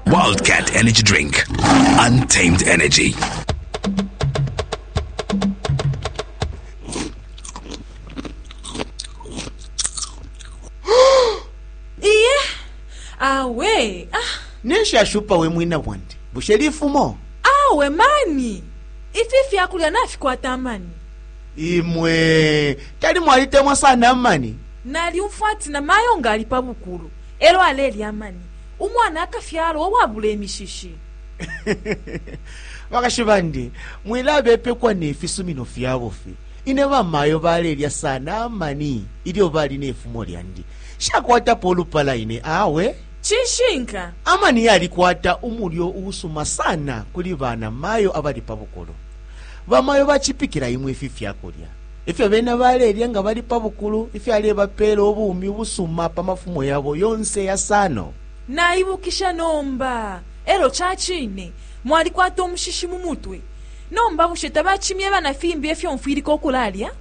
Wildcat Energy Drink. Untamed energy. iye awe ah, neshashupa we mwina bwandi bushe lifumo awe mani ifi fyakulya nafikwata amani imwe tali mwalitemwa sana amani nalyumfwa ati na mayo ngali pa bukulu Elo alelya amani, umwana akafyalwa uwabula imishishi. Bakashi bandi, mwilabepekwa ne fisumino fya bufi. Ine bamayo balelya sana amani ilyo bali ne fumo lyandi. Nshakwatapo ulupala ine awe. Cishinka, amani yalikwata umulyo uusuma sana kuli banamayo abali pa bukulu. Bamayo bacipikila imwe ifi fyakulya. Ifyo bena balelya nga bali pa bukulu ifyalebapeela ubumi ubusuma pa mafumo yabo yonse yasano. Naibukisha nomba. Elyo ca cine mwalikwata umushishi mu mutwe. Nomba bushe tabacimyeba na fimbi ifyo mfwilika ukulalya?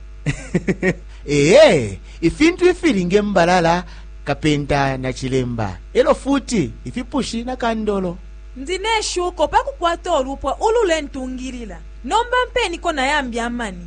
Ee, ifintu ifili nge mbalala, kapenta na cilemba, elyo futi ifipushi na kandolo. Ndi ne shuko pa kukwata ulupwa ululentungilila. Nomba mpeniko na yambi amani.